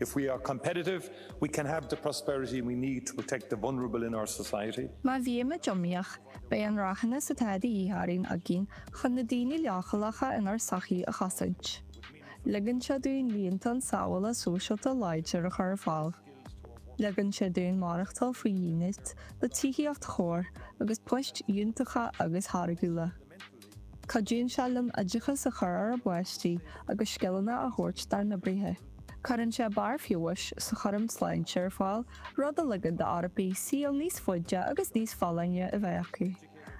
If we are competitive, we can have the prosperity we need to protect the vulnerable in our society. Má bhíonn muid iomaíoch, beidh an rathúnas atá de dhíth orainn againn chun na daoine leochaileacha inár sochaí a chosaint. Ligeann sé dúinn líontán sábhála sóisialta láidir a chur ar fáil. Ligeann sé dúinn maireachtáil faoi dhínit, le tithíocht chóir agus poist fhiúntacha agus tháirgiúla. Cuidíonn sé linn oideachas a chur ar ár bpáistí agus scileanna a thabhairt dár n-oibrithe. Cuireann sé barr feabhais sa chúram sláinte ar fáil, rud a ligeann d'Eorpaigh saol níos faide agus níos folláine a bheith acu.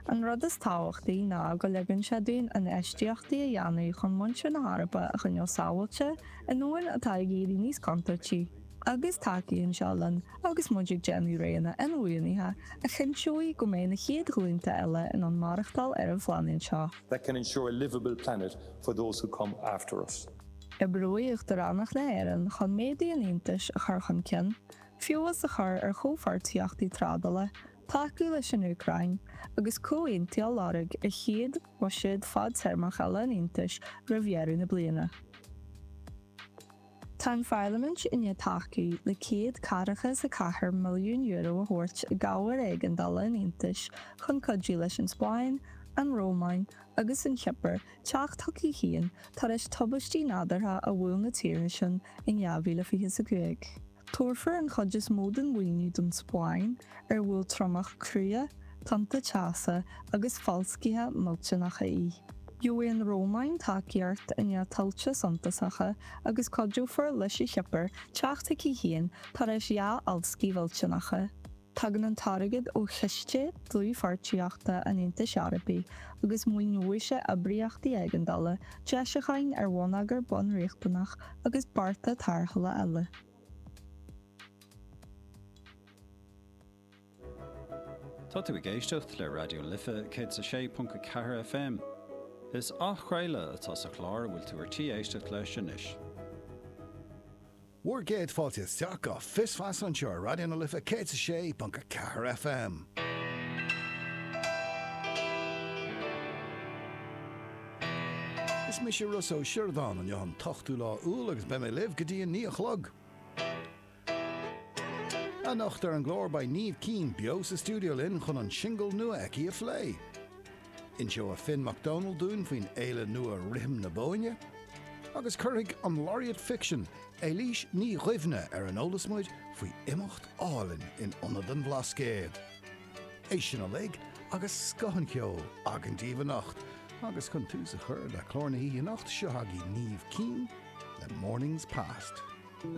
An rud is tábhachtaí ná go ligeann sé dúinn infheistíochtaí a dhéanamh chun muintir na hEorpa a choinneáil sábháilte i ndomhan atá ag éirí níos contúirtí. agus tacaíonn sé linn agus muid ag déanamh roghanna inbhuanaithe a chinnteoidh go mbeidh na chéad ghlúnta eile in ann maireachtáil ar an phláinéad seo. that can ensure a liveable planet for those who come after us. Oibreoidh Uachtaránacht na hÉireann chun méadú an Aontais a chur chun cinn, feabhas a chur ar chomhpháirtíochtaí trádála, tacú leis an Úcráin, agus comhaontú a lorg ar chéad bhuiséad fadtéarmach eile an Aontais roimh dheireadh na bliana. Tá an Pharlaimint i ndiaidh tacú le €144 milliún a thabhairt i gcabhair éigeandála an Aontais chun cuidiú leis an Spáinn, an Rómáin agus an Chipir teacht chucu féin tar éis tubaistí nádúrtha a bhuail na tíortha sin in 2025. Tabharfar an chuid is mó den mhaoiniú don Spáinn. ar bhuail triomach crua, tonnta teasa agus falscaithe millteanacha í. Gheobhaidh an Rómáin tacaíocht i ndiaidh tuilte suntasacha agus cuideofar leis an Chipir teacht chuici féin tar éis dhá fhalscaí mhillteanacha. Tagann an t-airgead ó Chiste Dlúthpháirtíochta an Aontais Eorpaigh agus maoineoidh sé oibríochtaí éigeandála, deisiúcháin ar bhonneagar bunriachtanach agus bearta tarrthála eile. Tá tú ag éisteacht le Raidió na Life 106.4 FM. Is athchraoladh atá sa chlár a bhfuil tú ar tí éisteacht leis anois. Bhur gcéad fáilte isteach go Fios Feasa anseo ar Raidió na Life 106.4 FM. Is mise Ros Ó Siordáin. Inniu an t-ochtú lá Iúil agus beidh mé libh go dtí a naoi a chlog. Anocht ar an gclár beidh Niamh Keane beo sa stiúideo linn chun an singil nua aici a phlé. Inseoidh Finn Mac Dónaill dúinn faoin fhéile nua Rithim na Bóinne, agus cuirfidh an Laureate Fiction Éilís Ní Dhuibhne ar an eolas muid faoi imeacht álainn in Ionad an Bhlascaoid. É sin uilig agus scoth an cheoil againn daoibh anocht agus chun tús a chur le clár na hoíche anocht, seo chugaibh Niamh Keane le Mornings Past.